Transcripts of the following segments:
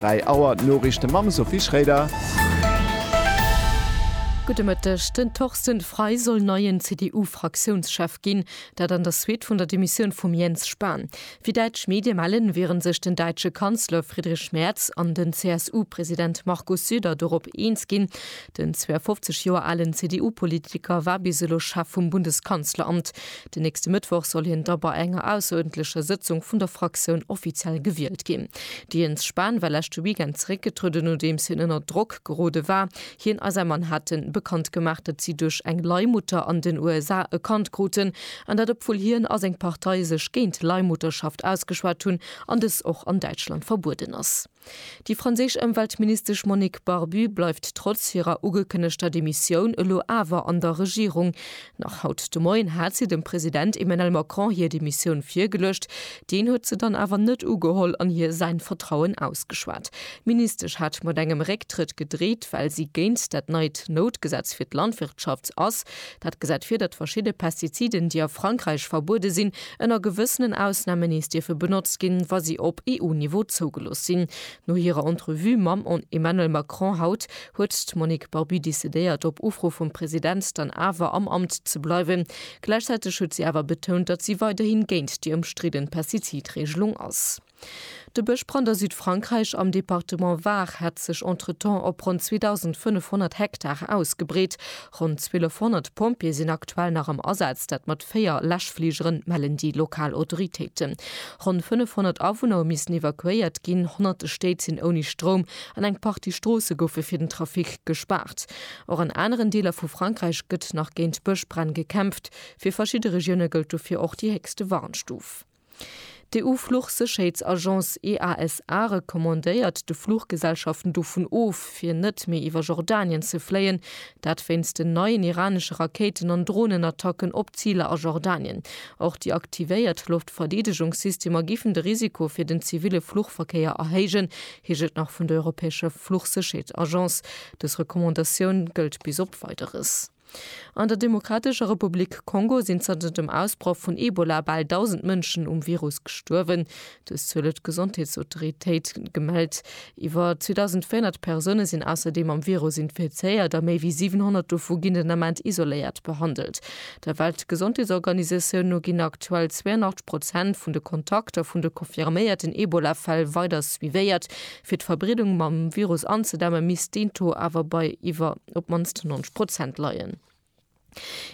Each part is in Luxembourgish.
3 Auer, d'Noriichte mam Sophie Schroeder. Gudde Mëtteg. Den Torsten Frei soll neien CDU-Fraktiounschef ginn, dat an der Suite vun der Demissioun vum Jens Spahn. Wéi däitsch Medie mellen, wiere sech den däitsche Kanzler Friedrich Merz an den CSU-President Markus Söder dorop eens ginn. Den 52 Joer alen CDU-Politiker war bis elo Chef vum Bundeskanzleramt. Den nächste Mëttwoch soll hien da bei enger ausseruerdentlecher Sëtzung vun der Fraktioun offiziell gewielt ginn. De Jens Spahn war leschte Weekend zeréckgetrueden, nodeems hien ënner Drock gerode war. Hien a säi Mann hate bekannt gemaach, datt si duerch eng Leihmutter an den USA e Kand kruten, an dat obwuel hien a seng Partei sech géint Leihmutterschaft ausgeschwat hunn an dës och an Däitschland verbueden ass. Déi franséisch Ëmweltministesch Monique Barbu bleift trotz hirer ugekënnegter Demissioun elo awer an der Regierung. Nach haut de Moien hat si dem President Emmanuel Macron hir Demissioun virgeluecht. Deen huet se dann awer net ugeholl an hir säin Vertrauen ausgeschwat. D'Ministesch hat mat engem Récktrëtt gedreet, well si géint dat neit Noutgesetz fir d'Landwirtschaft ass. Dat gesäit vir, datt verschidde Pestiziden, déi a Frankräich verbuede sinn, ënner gewëssenen Ausname nees dierfe benotzt ginn, wa si op EU-Niveau zougelooss sinn. No hirer Entrevue mam Emmanuel Macron haut huet d'Monique Barbu decidéiert, op Ufro vum President dann awer am Amt ze bleiwen. Gläichzäiteg huet si awer betount, datt si weiderhi géint déi ëmstridden Pestizidreegelung ass. De Bëschbrand a Südfrankräich am Departement Var hätt sech entretemps op ronn 2.500 Hektare ausgebreet. Ronn 1.200 Pompjeeë sinn aktuell nach am Asaz, dat mat véier Läschfligeren, mellen déi lokal Autoritéiten. Ronn 500 Awunner hu missen evakuéiert ginn. Honnerte Stéit sinn ouni Stroum an eng Partie Stroosse goufe fir den Trafic gespaart. Och an aneren Deeler vu Frankräich gëtt nach géint Bëschbränn gekämpft. Fir verschidde Regioune gëllt dofir och déi héchste Warnstuf. D'EU-Fluchsécherheetsagence EASA recommandéiert de Fluchgesellschaften dovun of, fir net méi iwwer Jordanien ze fléien. Dat wéinst den neien iranesche Rakéiten an Dronenattacken op Ziler a Jordanien. Och déi aktivéiert Loftverdeedegungssystemer géifen de Risiko fir den ziville Fluchverkéier erhéijen, heescht et nach vun der europäescher Fluchsécherheetsagence. Dës Recommandatioun gëllt bis op Weideres. An der Demokratescher Republik Kongo sinn zanter dem Ausbroch vun Ebola bal 1.000 Mënschen um Virus gestuerwen. Dës Zuel huet d'Gesondheetsautoritéit gemellt. Iwwer 2.400 Persoune sinn ausserdeem am Virus infizéiert a méi wéi 700 dovu ginn den Ament isoléiert behandelt. Der Weltgesondheetsorganisatioun no ginn aktuell 82 Prozent vun de Kontakter vun de confirméierten Ebola-Fäll weider suivéiert. Fir d'Verbreedung mam Virus anzedämme misst deen Taux awer bei iwwer. op d'mannst 90 Prozent leien.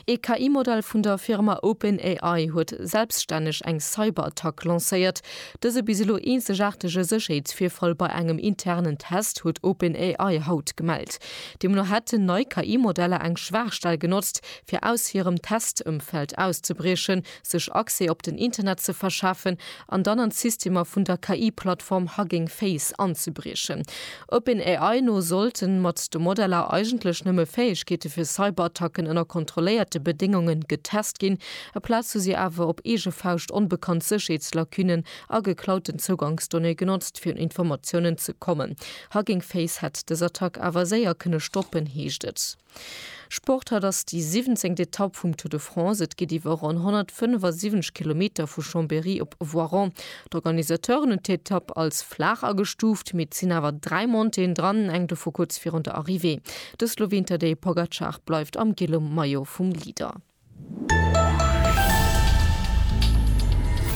Ee KI-Modell vun der Firma OpenAI huet selbstänneg eng Cyberattack lancéiert. Dëse bis elo eenzegaartege Sécherheetsvirfall bei engem internen Test huet OpenAI haut gemellt. Deemno hätten nei KI-Modeller eng Schwaachstell genotzt, fir aus hirem Testëmfeld auszebriechen, sech Accès op den Internet ze verschafen an dann an d'Systemer vun der KI-Plattform Hugging Face anzebriechen. OpenAI no sollten mat de Modeller eigentlech nëmme Fäegkeete fir Cyberattacken ënner kontrolléierte Bedéngunge getest ginn, aplaz hu si awer op eege Fauscht onbekannt Sécherheetslacunen a geklauten Zougangsdonnéeë genotzt, fir un Informatiounen ze kommen. Hugging Face hätt dës Attack awer séier kënne stoppen, heescht et. Sport, Haut ass déi siwwenzéngt Etapp vum Tour de France. Et geet iwwer ronn 175 Kilometer vu Chambéry op Voiron. D'Organisateuren hunn d'Etapp als flaach agestuuft, mee et sinn awer dräi Montéeën dran, eng dovu kuerz virun der Arrivée. De Sloween Tadej Pogacar bleift am gëlle Maillot vum Leader.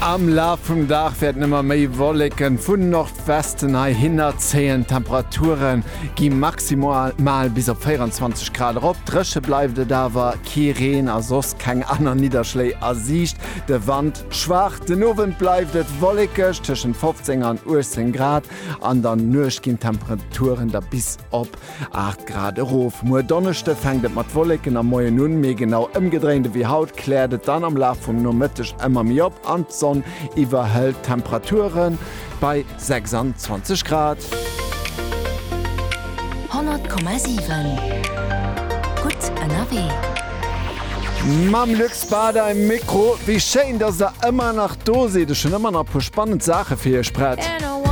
Am Laf vum Dag wäerten ëmmer méi Wolleken vun Nordwesten heihinner zéien. D'Temperature gi maximal bis op 24 Grad erop. Dréche bleift et awer, kee Reen a soss keng aner Nidderschléi a Siicht. De Wand schwaach. Den Owend bleift et wollekeg, tëschent 15 an 18 Grad. An der Nuecht ginn d'Temperaturen da bis op 8 Grad erof. Muer Donneschde fänkt et mat Wolleken am Moien un, mee genau ëmgedréint ewéi haut kläert et dann am Laf vum Nomëtteg ëmmer méi op an d'Sonn iwwerhëlt d'Temperature bei 26 Grad. 100,7 Gutt ënnerwee. Mam Luc Spada um Mikro. Wéi schéin, dass der ëmmer nach do sidd. Ech hunn ëmmer nach e puer spannend Saache fir iech prett.